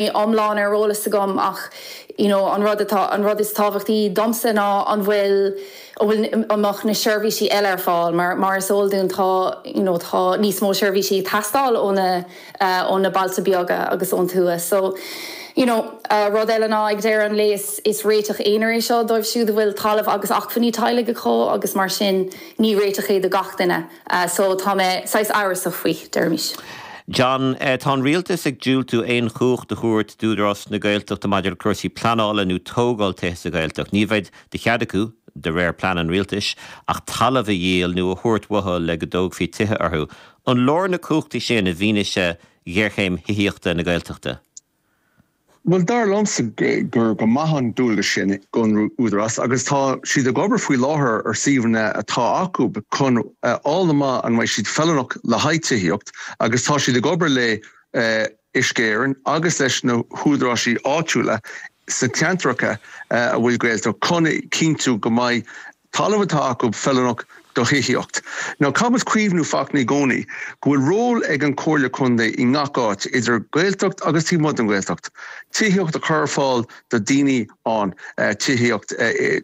iomlán ar eolas agam ach you know an rud atá an rud is tábhachtaí domsa ná an bhfuil an mbeadh na seirbhísí eile ar fáil mar mar is eol dúinn tá you know tá níos mó seirbhísí ag teastáil ó na ó na bailte beaga agus ón tuath so you know rud eile ná ag deireadh an lae is is réiteach aonair é seo dóibh siúd a bhfuil talamh agus acmhainní teaghlaigh acu agus mar sin ní réiteach é do gach duine. So, tá mé saghas amhrasach faoi, deirimis. John, tá an Rialtas ag diúltú aon chumhacht a thabhairt d'Údarás na Gaeltachta maidir le cúrsaí pleanála nó tógáil tithe sa Ghaeltacht. Ní bheidh de chead acu, de réir plean an Rialtais, ach talamh a dhíol nó a thabhairt uathu le go dtógfaí tithe orthu. An leor na cumhachtaí sin i bhfianaise ghéarchéim thithíochta na Gaeltachta? Bhuel, dar liomsa gur go maith an dualgas sin don Údarás agus tá siad ag obair faoi láthair ar suíomhanna atá acu chun a fháil amach an mbeidh siad feiliúnach le haghaidh tithíocht agus tá siad ag obair le hUisce Éireann agus leis na húdaráisí áitiúla sna ceantracha a bhfuil Gaeltacht acu chun a chinntiú go mbeidh Talamh atá acu feiliúnach do thithíocht. Ach caithfidh muid cuimhniú i gcónaí go bhfuil ról ag an Comhairle Contae i ngach áit, idir Ghaeltacht agus taobh amuigh den Ghaeltacht, tithíocht a chur ar fáil do daoine ann, tithíocht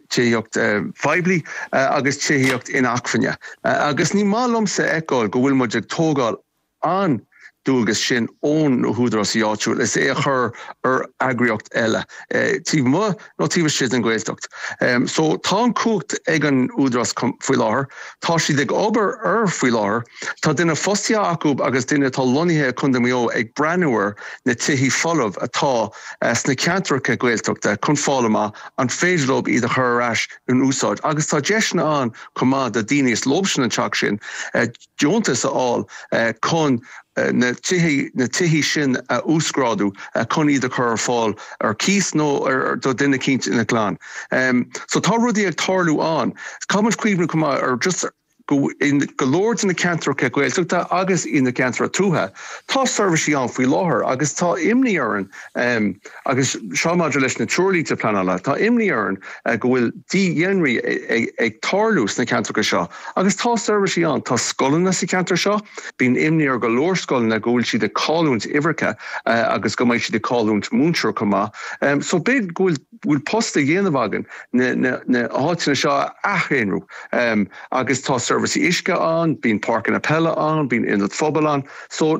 tithíocht phoiblí agus tithíocht inacmhainne. Agus ní maith liomsa a fheiceáil go bhfuil muid ag tógáil an dualgas sin ó na húdarásaí áitiúil is é a chur ar eagraíocht eile, taobh amuigh nó taobh istigh den Ghaeltacht. So tá an chumhacht ag an Údarás faoi láthair, tá siad ag obair air faoi láthair, tá duine fostaithe acu agus duine atá lonnaithe i Contae Mhaigh Eo ag breathnú ar na tithí folamh atá sna ceantracha Gaeltachta chun fáil amach an féidir leo iad a chur ar ais in úsáid agus tá deiseanna ann chomh maith do dhaoine ar leo an teach sin. deontas a fháil chun na na tithe sin a uasghrádú chun iad a chur ar fáil ar cíos nó do dhuine eicínt ina gclann. So tá rudaí ag tarlú ann. Caithfidh muid cuimhniú chomh maith ar just go in go leor de na ceantracha Gaeltachta agus ina gceantracha tuaithe, tá seirbhisí ann faoi láthair agus tá imní orainn, Agus seo maidir leis na treoirlínte pleanála, tá imní orainn go bhfuil dídhaonrú ag tarlú sna ceantracha seo. Agus tá seirbhísí ann, tá scoileanna sa cheantar seo, bíonn imní ar go leor scoileanna go bhfuil siad ag cailliúint uimhreacha agus go mbeidh siad ag cailliúint múinteoir chomh maith. So b'fhéidir go bhfuil post le déanamh againn na háiteanna seo a athdhaonrú. Agus tá seirbhísí uisce ann, bíonn páirceanna peile ann, bíonn ionad phobail ann. So.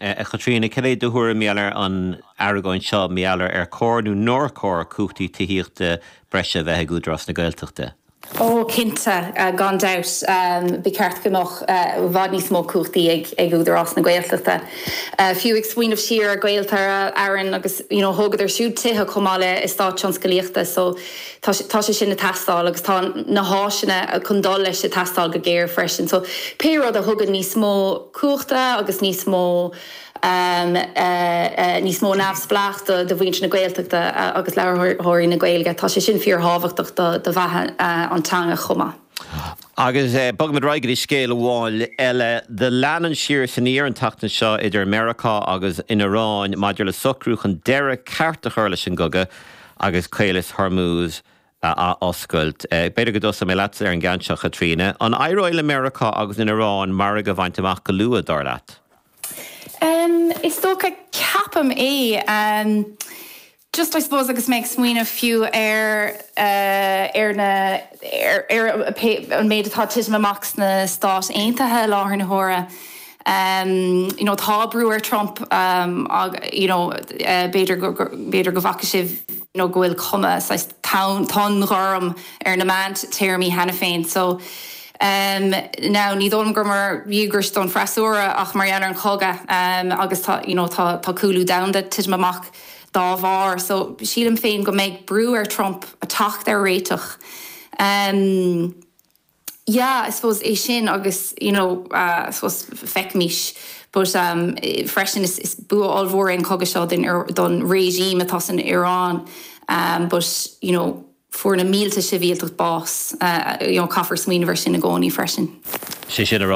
A Chaitríona, cad é do thuairim, gheall ar an argóint seo, mar gheall ar ar chóir nó nár chóir cumhachtaí tithíochta breise a bheith ag Údarás na Gaeltachta? Ó, cinnte, gan dabht, ba cheart go mbeadh i bhfad níos mó cumhachtaí ag Údarás na Gaeltachta. Fiú ag smaoineamh siar ar Gaeltarra Éireann agus, you know, thógadar siúd tithe chomh maith le estáit tionscalaíochta, so, Tá sé sin ag teastáil agus tá na háiseanna chun dul leis ag teastáil go géar freisin. So pé rud a thugann níos mó cumhachtaí agus níos mó níos mó neamhspleách do do mhuintir na Gaeltachta agus labharthóirí na Gaeilge, tá sé sin fíorthábhachtach do do bheatha an teanga chomh maith. Agus bogaimid ar aghaidh go dtí scéal amháin eile. Do lean an siar is aniar an tseachtain seo idir Meiriceá agus an Iaráin maidir le socrú chun deireadh ceart a chur leis an gcogadh. agus Caolas Hormuz a athoscailt. B'fhéidir go dtosóidh mé leatsa ar an gceann seo, Chaitríona. An éireoidh le Meiriceá agus an Iaráin margadh a bhaint amach go luath, dar leat? Is dócha, ceapaim. Just, I suppose, agus mé ag smaoineamh fiú ar na, ar an méid atá ag titim amach sna Stáit Aontaithe i láthair na huaire, you know tá brú ar Trump you know b'fhéidir go b'fhéidir go bhfaca sibh you know go bhfuil cuma saghas tonn tonn ghorm ar na meán téarmaí cheana féin so now ní dóigh liom gur mar dhíograis don fhreasúra ach mar gheall ar an chogadh agus tá you know tá tá cúlú domhanda titim amach dá bharr so sílim féin go mbeidh brú ar Trump teacht ar réiteach. Yeah, I suppose é sin agus, you know, I suppose feicimís, but um freisin is is bua ollmhór é an cogadh seo don don regime atá san Iaráin um but, you know, fuair na mílte sibhialtach bás, you know, caithfear smaoineamh air sin i gcónaí freisin. Sé sin a rá.